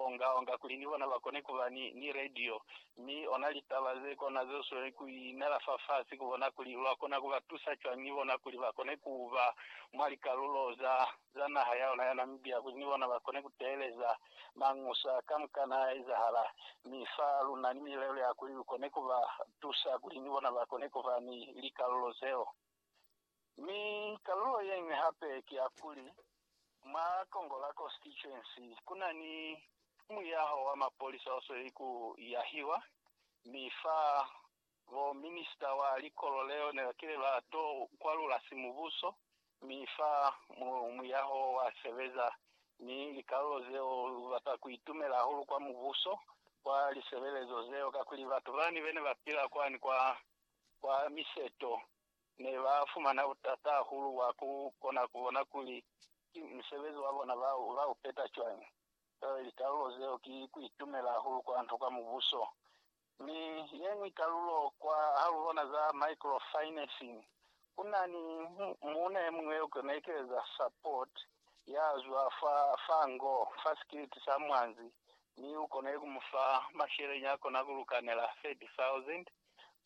onga-onga kuli ni bona ba kone ku ba ni, ni radio, mi ona litaba ze kona ze sweli ku inela fafasi, ku bona kuli lwa kona ku ba tusa cwañi ni bona kuli ba kone ku ba mwa likalulo za, za naha ya ona ya Namibia, kuli ni bona ba kone ku teeleza mañusa kamukana a ezahala. Mi fa luna ni milelo ya kuli lu kone ku ba tusa kuli ni bona ba kone ku ba ni likalulo zeo. Mi kalulo yeñwi hape ki ya kuli, mwa Congo la Constituency ku na ni muyaho wa mapolisa o sweli ku yahiwa, mi fa bo minista wa likolo leo ne ba kile ba to kwalula simubuso, mi fa mu, muyaho wa sebeza, mi likalulo zeo lu bata ku itumela hahulu kwa mubuso, kwa lisebelezo zeo, kakuli batu bani bene ba pila kwani kwa kwa miseto ne ba fumana butata hahulu bwa ku kona ku bona kuli ki musebezi wa bona ba ba u peta cwañi. Joale likalulo zeo ki ku itumela hahulu kwa nto kwa Mubuso. Mi ye ñwi kalulo kwa ha lu bona za microfinancing, ku na ni muuna ye muñwi yo ki na ekeleza support ya zwa fa fa ngo, fa sikiliti sa mwanzi, mi u konile ku mu fa masheleñi a kona ku lukanela 30,000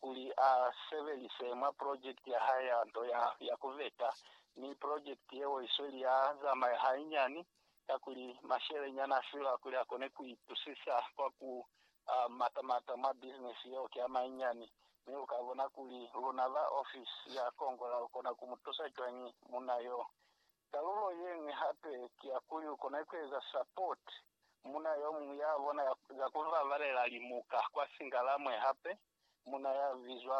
kuli a sebelise mwa project ya hae ya nto ya ku veta, mi project yeo i sweli ya zamaya hainyani kakuli mashele nyana a fila kuli a kone ku itusisa kwa ku mata mata mwa business yeo ki a mainyani. Mi u ka bona kuli luna ba office ya Kongola lu kona ku mu tusa cwañi munna yo. Kalulo ye ñwi hape ki ya kuli u kona ku eza support muuna yo muñwi ya bona ya za ku babalela limuka kwa Singalamwe. Hape muuna ya bizwa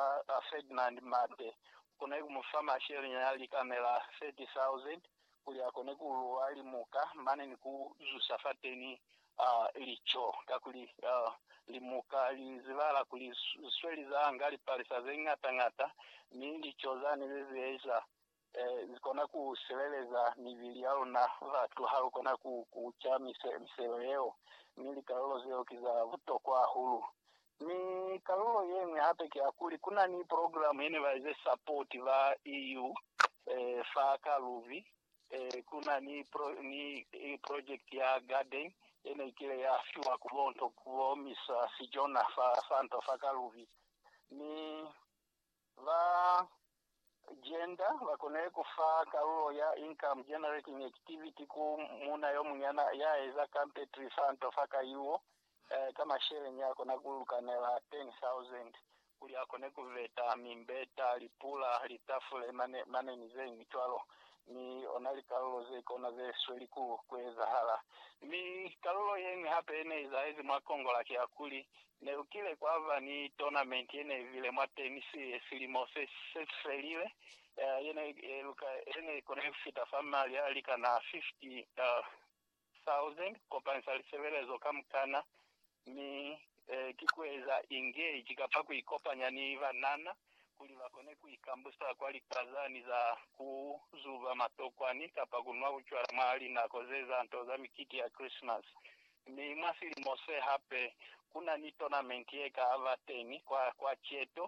Ferdinand Mate u kona ku mu fa masheleña a likamela 30,000 kuli a kone ku luwa limuka mane ni ku zusa fateni lico. Kakuli limuka li zibahala kuli li sweli za nga lipalisa ze ñata-ñata mi lico zani ze zieza Lu kona ku sileleza mibili ya luna. Batu ha lu kona ku kuca miselo yeo, mi likalulo zeo ki za butokwa hahulu. Mi kalulo ye ñwi hape ki ya kuli, ku na ni progilamu ye ne ba ize sapoti ba EU fa ka lubi. Ku na ni projekiti ya gadeni ye ne ikile ya fiwa ku bo nto ku bo misa sijona fa nto fa ka lubi. Mi Ba gender ba konile ku fa kalulo ya income generating activity ku muuna yo munyana ya eza kampetri fa nto fa kayuo ka masheleñi a kona ku lukanela 10,000 kuli a kone ku veta mimbeta, lipula, litafule, mane, mane ni ze ñwi cwalo. Mi ona likalulo ze kona ze sweli ku, ku ezahala. Mi kalulo ye ñwi hape ye ne izahezi mwa Congo la ki ya kuli, Nekukile kwaba ni tournament yenebile mwa tennis ye silimo sesifelile, yene eluka yene ikona kufita fa mali alikana 50,000 kukopanisa lisebelezo kamukana, mi ki kueza engage kapa kuikopanya ni banana kuli bakone kuikambusa kwa likwazani za kuzuba matokwani kapa kunwa bucwala mwa linako zeza nto za mikiti ya Christmas. Mi mwa silimo se hape ku na ni tournament ye ka ba teñi kwa, kwa Cheto.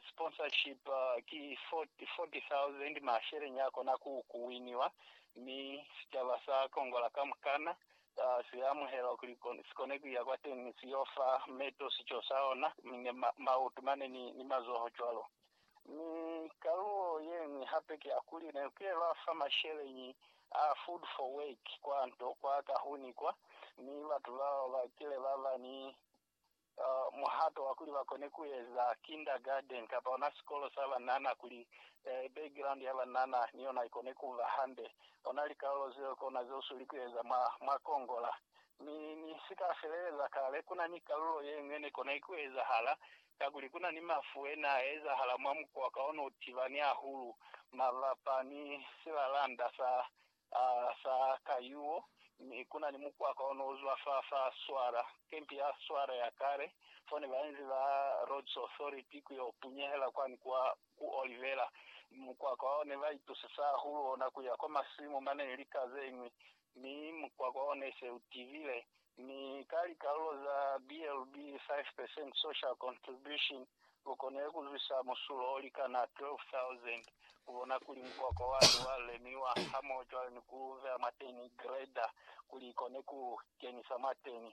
Sponsorship ki K40,000, masheleñi a kona ku, ku winiwa, mi sicaba sa Kongola kamukana si a amuhela kuli si kone ku ya kwateñi, si yo fa meto sico sa ona, mi ne ma, maoto mane ni, ni mazoho cwalo. Mi kalulo yeñwi hape ki ya kuli ne ku yelwa fa masheleñi a Food for Work kwa nto kwa kahuni kwa, mi batu bao ba kile ba ba ni muhato wa kuli ba kone ku eza kindergarten kapa ona sikolo sa banana kuli background ya banana ni yona i kone ku ba hande. Ona likalulo zeo ki ona ze u sweli ku eza mwa, mwa Kongola. Mi ni si ka feleleza kale, ku na ni kalulo yeñwi ye ne kona ku ezahala kakuli kuna ni mafu e ne a ezahala mwa mukwa ka ona u tibani hahulu mabapa ni silalanda sa, sa kayuo, mi kuna ni mukwa ka ona u zwa fa, fa swara, kempi ya swara ya kale, fo ne ba inzi ba Rhodes Authority ku yo punyehela kwani kwa ku Olivera. Mukwa ka ona ne ba itusisa hahulu ona ku ya kwa masimu mane ni lika zeñwi, mi mukwa ka ona ne se u tibile Mi ka likalulo za BLB, Five Percent Social Contribution, lu konile ku zwisa musulo o likana 12,000 ku bona kuli mukwakwa wani wa lemiwa hamoho cwale ni ku vea mwateni grader kuli ikone ku kenisa mwateni.